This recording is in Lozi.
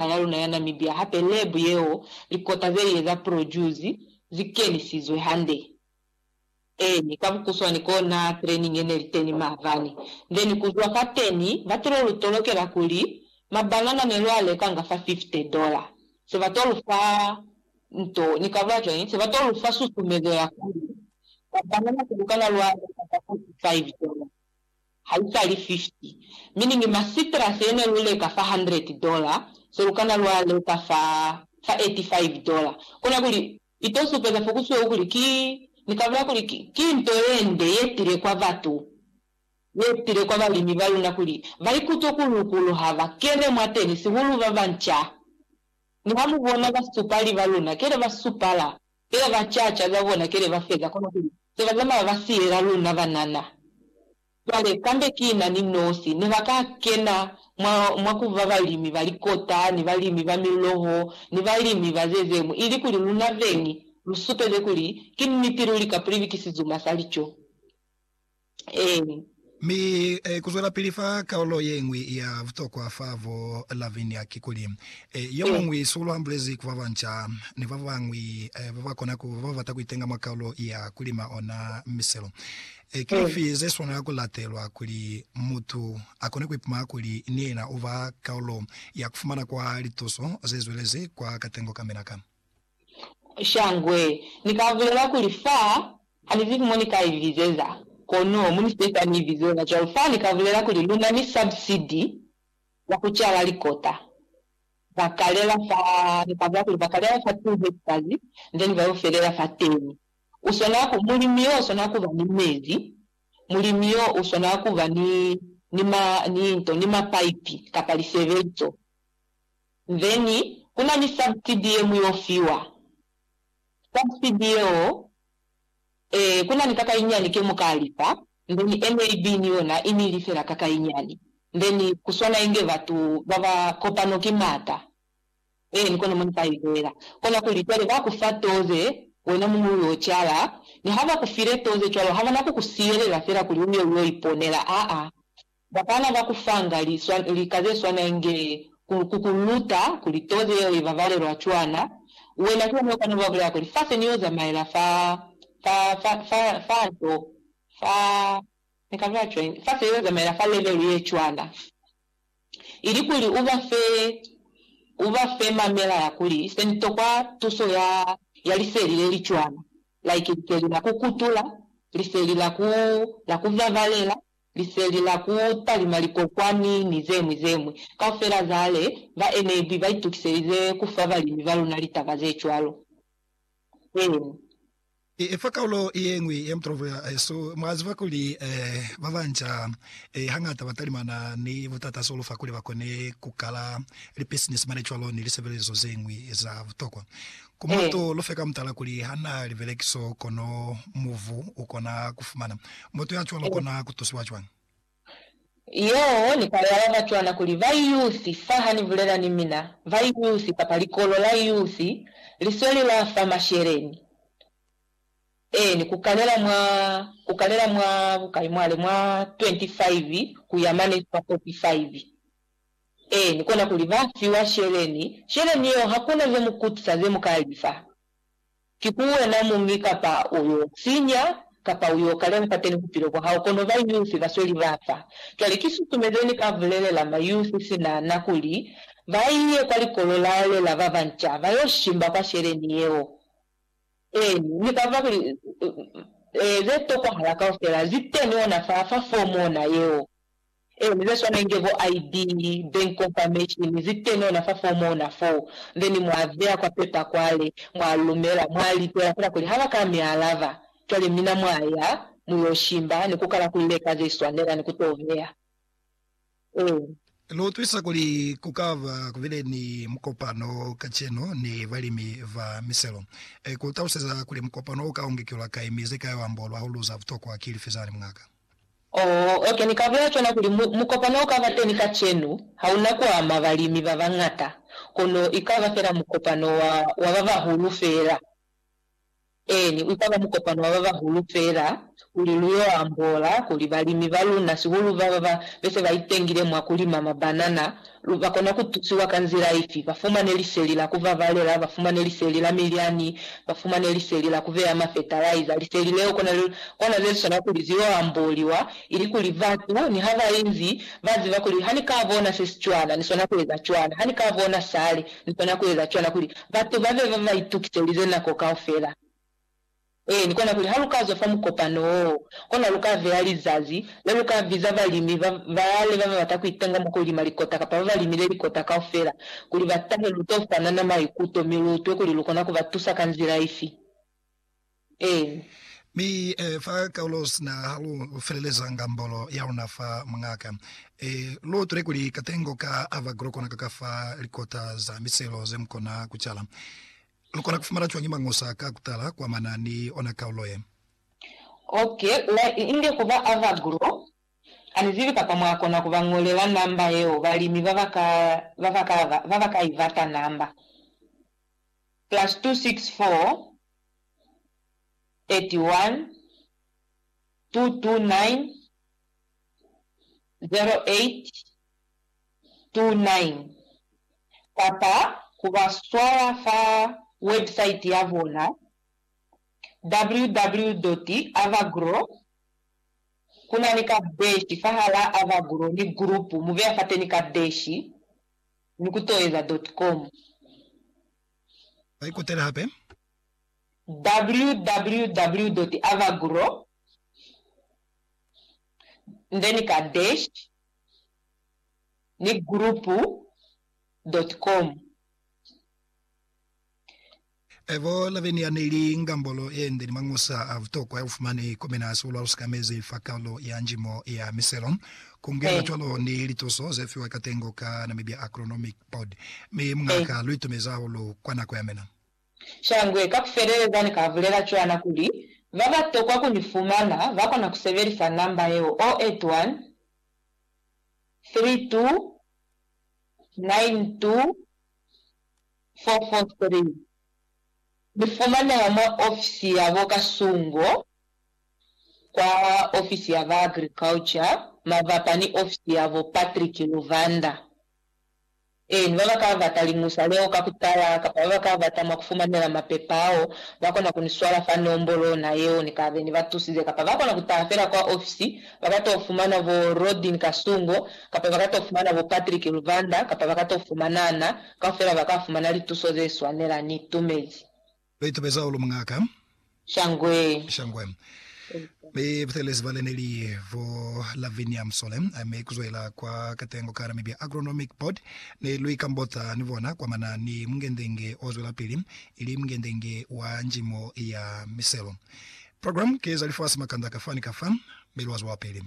naha yaluna ya Namibia hape lab yeo likota zelie za produce zikenisizwe hande. Eeni, ka bukuswani kona training yeneli teni maabani. Then kuzwa fateni bato lu tolokela kuli mabanana nelua lekanga fa 50 dollar, se bato lufa nto, nikabulela cwañi, se bato lufa susumezo ya kuli mabanana selukana lua leka fa 45 dollar. haisali 50, mi ni ngi masitrasi ye ne lu leka fa hundred dola, se lu kana lwa leka fa, fa eighty five dola. Kona kuli, i to supeza fo ku sweu kuli ki, Ni kabula kuli ki, ki nto ye nde ye tile kwa batu, ye tile kwa balimi ba luna kuli ba ikutwe ku lukulu ha ba kene mwateni, sihulu ba banca. Niha mu bona basupali ba luna, kele ba supala. Kele ba caca za bona kele ba feza kono kuli se ba zamaya ba siyela luna banana. Cwale kambe kina ni nosi ne ba ka kena mwa, mwa ku ba balimi ba likota, ni balimi ba miloho, ni balimi ba ze zeñwi, ili kuli luna beñi lu supeze kuli ki niti luli ka pulibikisi zuma sa lico. Ee. Mi kuzwelapili fa kaulo yeñwi ya butokwa fa bo Lavinia kikuli, yomuñwi sulu ambulezi ku babanca ni babañwi babakona kuba babata kuitenga mwa kaulo ya kulima ona miselo, Ki lifi zeswanela kulatelwa kuli mutu akone kuipumana kuli ni yena uba kaulo ya kufumana kwa lituso zezwelezi kwa katengo kamina ka? Shangwe, Ni ka bulela kuli fa ha ni zibi mo ni ka i bizeza, kono mu ni sepa ni i bizela cwalo. Fa ni ka bulela kuli luna ni sabsidi ya ku cala likota. Bakalela fa, ni ka bulela kuli bakalela fa 2 hectares, then ba yo felela fa 10. U swana ku, mulimi yo u swana kuba ni mezi, mulimi yo u swana kuba ni, ni ma, ni nto, ni mapaipi kapa lisebeziso. Then kuna ni subsidy ye muyo fiwa. Subsidy yeo, ee, kuna ni kakainyani ke muka lipa, then NAB ni yona i ni lifela kakainyani. Then kuswana inge batu baba kopano ki mata. Ee, ni kono mo ni ka ibelela. Kona kuli cwale ba ku fa toze, wena muñwi u yo cala. Niha ba ku file toze cwalo, habana ku ku siyelela fela kuli u ye u yo iponela, aa. Bapala ba ku fanga lika ze swana inge ku ku luta kuli tozi yeo i babalelwa cwana, wena ki yona u kana u ba bulela kuli, Fa se ni yo zamaela fa, fa, fa, fa, fa nto, fa, ni ka bulela cwañi? fa se yo zamaela fa levelu ye cwana. Ilikuli u ba fe, u ba fe mamela ya kuli, Se ni tokwa tuso ya, ya liseli le li cwana, like liseli la ku kutula, liseli la ku, la ku babalela, Liseli la ku talima likokwani ni zemwi zemwi kaufela za le ba enebwi ba itukiselize ku fa balimi ba luna litaba ze cwalo. Eng. I fa kaulo ye ñwi ya mutolopo ya hesu. Mwa ziba kuli ba banca hañata ba talimana ni butata z'o lu fa kuli ba kone ku kala lipisinisi mane cwalo ni lisebelezo ze ñwi za butokwa. Ku moto lu fe ka mutala kuli ha na libelekiso, kono muvu u kona ku fumana. Mutu ya cwalo u kona ku tusiwa cwañi? Yeo ni ka yala ka cwana kuli, Bayuyusi, saha ni bulela ni mina, bayuyusi, kapa likolo la yuyusi, li sweli la fa masheleñi. Eeni, ku kanela mwa, ku kanela mwa bukai mwale, mwa 25 ku ya mane kwa 45. Ee, ni kona kuli ba fiwa sheleni, sheleni yeo hakuna ze mu kutisa ze mu ka li fa. Ki ku wena muñi kapa u yo sinya, kapa u yo kalela fateni bupilo bwa hao, kono ba Yusi ba sweli ba fa. Cwale ki susumeze ni ka bulelela ma Yusi sina na kuli ba ye kwa likolo la lela ba banca ba yo shimba kwa sheleni yeo. Ee, ni ka fa kuli ze tokwahala kaufela zi teni ona fa, fa fomu ona yeo. Eeni, ze swana inge bo ID, Bank Confirmation, zi teni ona fa fomu ona foo. Then mwa beya kwa pepa kwale, mwa lumela, mwa litela fela kuli haba ka mi alaba, cwale mina mwa ya, mu yo shimba, ni ku kala ku leka ze swanela ni ku to beya. Eeni. Lu utwisa kuli ku ka ba ku bile ni mukopano kacenu ni balimi ba miselo. Ku taluseza kuli mukopano u ka ongekelwa kai, mi ze ka yo ambolwa hahulu za butokwa ki lifi zani, muñ'a ka? Oh, okay, ni ka bulela cwana kuli mu, mukopano ukaba teni kacenu, hauna kuama balimi babañata, kono ikaba fela mukopano wa, wa babahulu fela. Eeni, ikaba mukopano wa babahulu fela, kuli lu yo ambola kuli balimi baluna, sihulu baba ba bese baitengile mwa kulima mabanana, Lu ka kona ku tusiwa ka nzila ifi? Ba fumane liseli la ku babalela, ba fumane liseli la milyani, ba fumane liseli la ku beya mafetalaiza. Liseli leo kona le, kona ze li swana kuli ze yo amboliwa, ili kuli batu niha ba inzi ba ziba kuli, Ha ni ka bona se si cwana, ni swana ku eza cwana. Ha ni ka bona sale, ni swana ku eza cwana, kuli batu ba be ba ba itukiselize nako kaufela. Ee, ni kona kuli ha lu ka zwa fa mukopano woo, kona lu ka beya lizazi le lu ka biza balimi ba baale ba ba bata ku itenga mwa ku lima likota kapa ba ba limile likota kaufela kuli ba tahe lu to fanana maikuto mi lu utwe kuli lu kona ku ba tusa ka nzila ifi. Ee. Mi fa kaulo sina ha lu feleleza ngambolo ya luna fa muñaka, ee, lu utwile kuli katengo ka ava ku lu kona ku ka fa likota za miselo ze mu kona ku cala. Lukona kufumana cwañi mañosa ka kutala kuamana ni ona kaulo ye? Ok, la inge kuba ava grow. Anizibi kapa mwakona kuba ñolela namba yeo balimi baba ka baba ka baba ka ibata namba, plus 264 31 229 08 2-9, kapa ku ba swala fa webusaiti ya bona www.avagro. Ku na ni kadeshi fahalaa Avagro ni gulupu, mu beya fateni kadeshi, mi ku toeza .com. Ba ikutele hape. www.avagro, then kadeshi. ni group dot com. Evo Laveni yaneli ngambolo yende ni mañosa a butokwa ya bufumani ku mina sibulo alusikamezi fa kalulo ya njimo ya miselo, kungela cwalo ni lituso zefiwa katengo ka Namibia Agronomic Board. Mi Muñ'a ka luitumezi hahulu kwa nako yamina. Shangwe ka kufeleleza ni ka bulela cwana kuli, Ba ba tokwa ku ni fumana ba kona ku sebelisa namba yeo, 081 32 92 443. Ni fumaneha mwa ofisi ya bo Kasungo kwa ofisi ya ba Agriculture mabapa ni ofisi ya bo Patrick Luvanda. Eeni, ba ba ka bata liñusa leo ka ku tala kapa ba ba ka bata mwa ku fumanela mapepa ao, ba kona ku ni swala fa nombolo ona yeo ni ka be ni ba tusize. Kapa ba kona ku taha fela kwa ofisi, ba ka t'o fumana bo Rodin Kasungo, kapa ba ka t'o fumana bo Patrick Luvanda, kapa ba ka t'o fumana na. Kaufela ba ka fumana lituso ze swanela. Ni itumezi. Li tubeza hahulu Muñaka. Shangwe. Shangwe. Mi butelezi bale neli bo Lavinia Msole, mi kuzwela kwa katengo ka Namibia Agronomic Board, ne lwi kambota ni bona kwamana ni mungendenge o zwelapili, ili mungendenge wa njimo ya miselo. Program ki za lifasi makanda kafa ni kafa, mi lwa zwelapili.